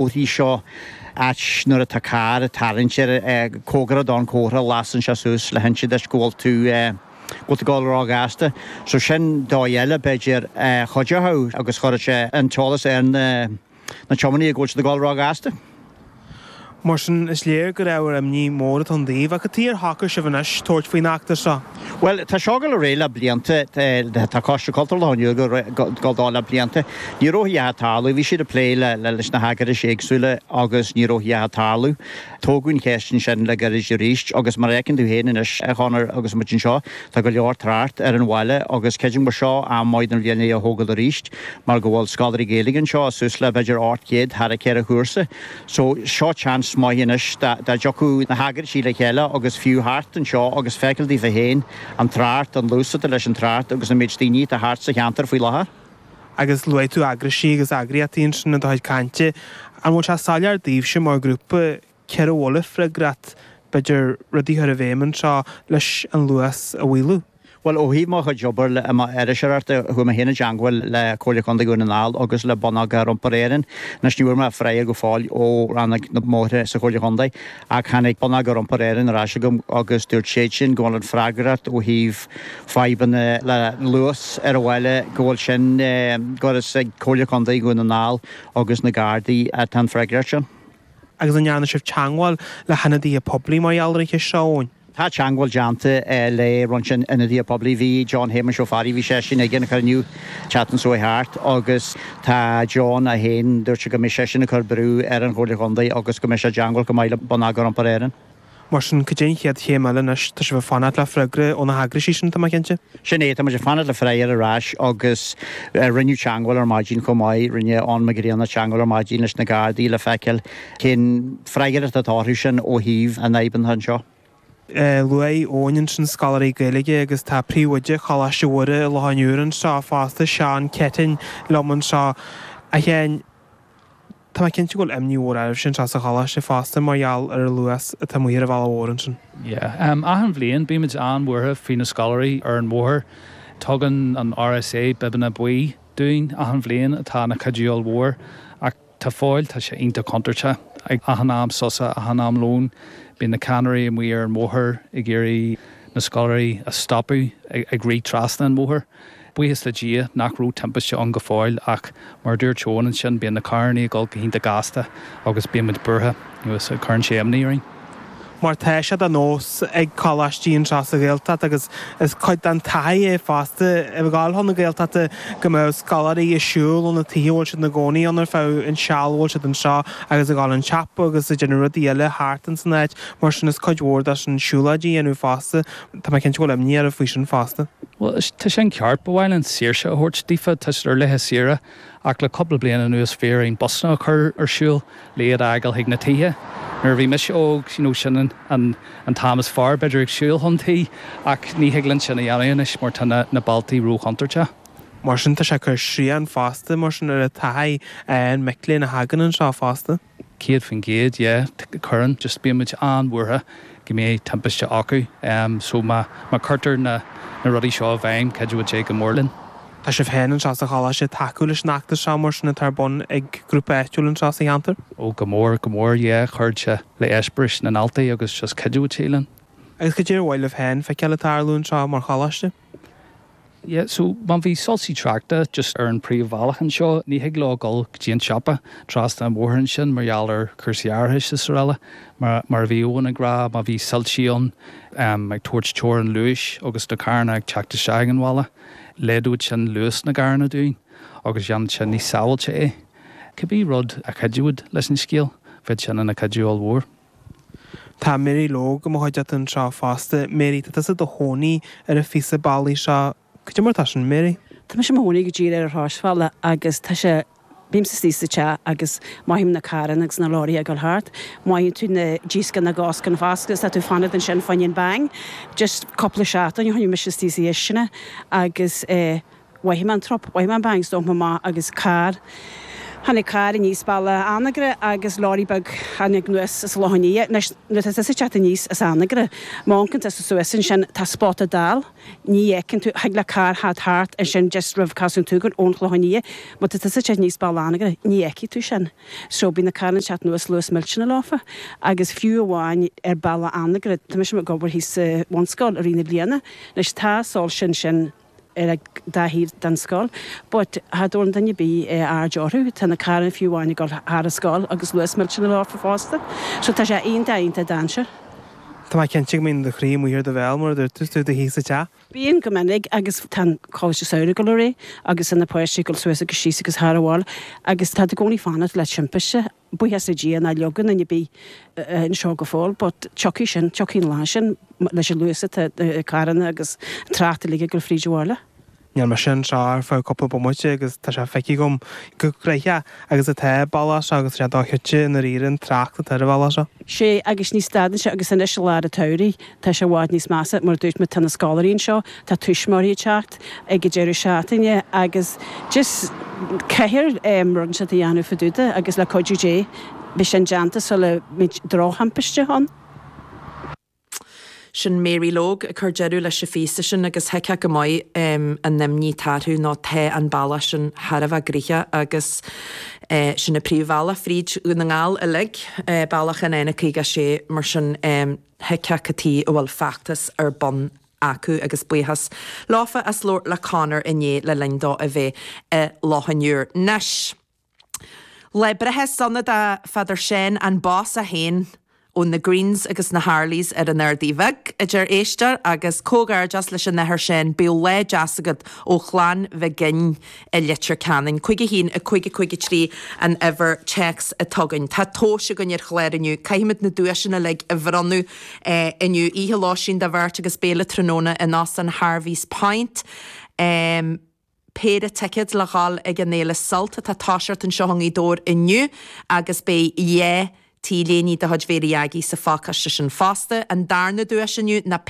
uirthi seo, ach nuair atá carr ag tarraingt air cóngarach don chomhartha a lasann sé suas le hinse duit go bhfuil tú go bhfuil tú ag dul ró-ghasta. So sin dóigh eile, b'fhéidir, a chuideochadh agus chuirfeadh sé an t-eolas ar na na tiománaithe go bhfuil siad ag dul ró-ghasta. Mar sin, is léir go raibh ábhar imní mór ar an dá thaobh. Ach cad é ar shocraigh sibh anois tabhairt faoin fheachtas seo? Bhuel, tá seo ag gabháil ar aghaidh le blianta. Tá Coiste Cultúrtha Loch an Iúir ag gabháil dó le blianta. Ní raibh a dhath ag tarlú. Bhí siad ag plé leis na heagrais éagsúla agus ní raibh a dhath ag tarlú. Tógadh an cheist ansin le gairid arís agus mar a fheiceann tú féin anois, a Chonaill, agus muid anseo, tá go leor trácht ar an bhaile agus creidim gur seo am maith den bhliain é a thógáil arís mar go bhfuil scoláirí Gaeilge anseo suas le b'fhéidir ocht gcéad thar cheithre chúrsa. So, seo chance maith anois dá dtiocfadh na heagrais le chéile agus fiú theacht anseo agus feiceáil daofa féin an trácht, an luas atá leis an trácht agus an méid daoine atá thart sa cheantar faoi láthair. Agus luaigh tú eagrais agus eagraíochtaí ansin i do chuid cainte. An bhfuil sé soiléir daoibhse mar ghrúpa cé air a bhfuil an fhreagracht, b'fhéidir, rudaí a chur i bhfeidhm anseo leis an luas a mhaolú? Bhuel, ó thaobh mo chuid obair iriseoireachta, chuaigh mé féin i dteangmháil le Comhairle Contae Dhún na nGall agus le Bonneagar Iompair Éireann. Anois, ní bhfuair mé freagra go fóill ó rannóg na mbóithre sa Chomhairle Chontae, ach tháinig Bonneagar Iompair Éireann ar ais agam agus dúirt siadsin go bhfuil an fhreagracht ó thaobh fadhbanna le luas ar an bhaile, go bhfuil sin, gur is ag Comhairle Contae Dhún na nGall agus na Gardaí atá an fhreagracht sin. Agus an ndearna sibh teangmháil le hionadaithe poiblí mar gheall ar an cheist seo, Eoin? Tá teangmháil déanta le roinnt ionadaithe poiblí. Bhí John Shéamuis Ó Fearraigh, bhí seisean ag an chruinniú an tseachtain seo a chuaigh thart agus tá John é féin, dúirt sé go mbeidh seisean ag cur brú ar an Chomhairle Chontae agus go mbeidh sé i dteangmháil chomh maith le Bonneagar Iompair Éireann. Mar sin, cad é an chéad chéim eile anois? Tá sibh ag fanacht le freagra ó na heagrais sin, tá mé cinnte? Sin é, tá muid ag fanacht le freagra ar ais agus rinneadh teangmháil ar maidin chomh maith, rinne Eoin Mac Grianna teangmháil ar maidin leis na Gardaí le feiceáil cén fhreagracht atá orthusan ó thaobh na bhfadhbanna anseo? Luaigh Eoin ansin scoláirí Gaeilge agus tá príomhoide Choláiste Mhuire i Loch an Iúir anseo fosta, Seán Ceitinn, liom anseo. A Sheáin, tá mé cinnte go bhfuil imní mhór oraibhse anseo sa choláiste fosta mar gheall ar an luas atá amuigh ar an bhealach mhór ansin. Yeah. Achan bhliain bímid an-bhuartha faoi na scoláirí ar an bhóthar. Tugann an RSA bibeanna buí dúinn achan bhliain atá ina cuidiú mhór ach. go fóill, tá sé iontach contúirteach. Ag achan am sosa, achan am lón, bíonn na ceannairí amuigh ar an mbóthar ag iarraidh na scoláirí a stopadh ag rith trasna an bhóthair. Buíochas le Dia nach raibh timpiste ann go fóill ach mar a dúirt Eoin ansin, bíonn na carranna ag dul go hiontach gasta agus bíonn muid buartha, nó is cuireann sé imní orainn. mar tá sé de nós ag coláistí anseo sa Ghaeltacht agus is cuid den taithí é fosta a ghabháil chun na Gaeltachta go mbeadh scoláirí ag siúl ó na tithe a bhfuil siad ina gcónaí ann ar feadh an seal a bhfuil siad anseo agus ag gabháil chun an tsiopa agus ag déanamh rudaí eile thart in san áit mar sin is cuid mhór de sin siúlóid a dhéanamh fosta. Tá mé cinnte go bhfuil imní oraibh faoi sin fosta. Bhuel, tá sin ceart. Ba mhaith linn saoirse a thabhairt daofa. Tá siad ar laetha saoire. ach le cúpla bliain anuas bhí orainn busanna a chur ar siúl le iad a fhágáil chuig na tithe. Nuair a bhí mise óg, you know, sin an, an t-am is fearr b'fhéidir ag siúl chun tí, ach ní thig linn sin a dhéanamh anois mar tá na, na bealtaí ró-chontúirteach. Mar sin tá sé ag cur srian fosta mar sin ar an taithí ag mic léinn a thagann anseo fosta. Céad faoin gcéad, yeah, cuireann, just bíonn muid an-bhuartha go mbeidh timpiste acu, em so má, má cuirtear na, na rudaí seo i bhfeidhm, chuideodh sé go mór linn. Tá sibh féin anseo sa choláiste ag tacú leis an fheachtas seo mar sin atá ar bun ag grúpa áitiúil anseo sa cheantar? Ó go mór, go mór, yeah, chuirfeadh sé le heispéiris na ndaltaí agus just chuideodh sé linn. Agus cad é ar mhaith libh féin feiceáil ag tarlú anseo mar choláiste? Yeah so má bhí soilsí tráchta just ar an príomhbhealach anseo ní thig leo dhul go dtí an siopa trasna an bhóthair ansin mar gheall ar cúrsaí árachais is araile mar, mar a bhí Eoghan ag rá má bhí soilsí ann ehm ag tabhairt teorainn luais agus na carranna ag teacht isteach ag an bhaile laghdódh sin luas na gcarranna dúinn agus dhéanfadh sin níos sábhailte é. Cibé rud a chuideodh leis an scéal bheadh sin ina chuidiú ollmhór. Tá Mary Logue i mo chuideachta anseo fosta. Mary, tá tusa i do chónaí ar an phíosa bealaigh seo. Cad é mar atá sin, Mary? Tá mise i mo chónaí go díreach ar an shráidbhaile agus tá sé, bímse istigh sa teach agus mothaím na carranna agus na leoraithe ag dul thart. Mothaíonn tú díoscán na gcoscán á bhfáscadh is tá tú ag fanacht ansin fá choinne bang. Just cúpla seachtain ó shin bhí mise istigh sa chistineach agus eh. Mhothaigh mé an trup, mhothaigh mé an bang, 's d'amharc mé amach agus carr, tháinig carr aníos bealach Anagaire agus lorry beag tháinig anuas as an Chlochán Liath. Anois nuair atá tusa ag teacht aníos as Anagaire, má amharcann tusa suas ansin, tá spota dall, ní fheiceann tú, thig le carr theacht thart ansin just roimh Casadh an tSúgáin ón Chlochán Liath, má tá tusa ag teacht aníos bealach Anagaire, ní fheicfidh tú sin. So bíonn na carranna ag teacht anuas luas millteanach leofa agus fiú amháin ar bhealach Anagaire, tá mise ag obair thíos sa bhunscoil i rith na bliana, anois tá soilse ansin, ar an dá thaobh den scoil but cha dtabharann duine ar bith aird orthu. Tá na carranna fiú amháin ag dul thar an scoil agus luas millteanach leofa fosta. So tá sé iontach, iontach dainséarach. Tá mé cinnte go mbíonn do chroí amuigh ar do bhéal, mar a dúirt tú, 's tú i do shuí sa teach. Bíonn go minic agus tá an Coláiste Samhraidh ag dul ar aghaidh agus tá na páistí ag dul suas agus síos agus thar abhaile agus tá tú i gcónaí ag fanacht le timpiste. buíochas le Dia nár leagadh aon duine ar bith anseo go fóill but tiocfaidh sin, tiocfaidh an lá sin leis an luas atá ag carranna agus an trácht uilig ag dul fríd an bhaile. Níl mise anseo ar feadh cúpla bomaite agus tá sé feicthe agam chomh gnaitheach agus atá an baile seo agus tá sé dochreidte i ndáiríre an trácht atá ar an bhaile seo. Sea, agus ní stadann sé agus anois i lár an tsamhraidh Tá sé i bhfad níos measa, mar a dúirt mé, tá na scoláirí anseo, tá tuismitheoirí ag teacht ag an deireadh seachtaine agus just caithfear rud éigin a dhéanamh fadúda agus le cuidiú Dé beidh sin déanta sula mbeidh drochthimpiste ann. Sin Mary Logue ag cur deireadh leis an phíosa sin agus thuigfeá go maith an imní atá orthu nó tá an bealach sin thar a bheith gnaitheach agus sin an príomhbhealach fríd Dhún na nGall uilig, bealach an N56 mar sin. thuigfeá cad chuige a bhfuil feachtas ar bun acu agus buíochas leofa as labhairt le Conor inné le linn dó a bheith i Loch an Iúir. Anois lá breithe sona do Father Seán, an boss é féin ó na Greens agus na Harleys ar an Ardaidh Bheag, a deir éisteoir agus comhghairdeas leis an Athair Seán, bíodh lá deas agat ó Chlann Mhig Fhinn. i Leitir Ceanainn. 51553 an uimhir téacs atá againn. Tá tomhas againn ar an chlár inniu. Caithfimid na duaiseanna uilig a bhronnadh inniu. Oíche lóistín do bheirt agus béile tráthnóna in Óstán Harvey's Point. Péire ticead le dhul ag an fhéile Sult atá ag toiseacht anseo i nGaoth Dobhair inniu agus beidh dhá T-léiní de chuid Mhary Aggie sa phácáiste sin fosta. An darna duais inniu ná.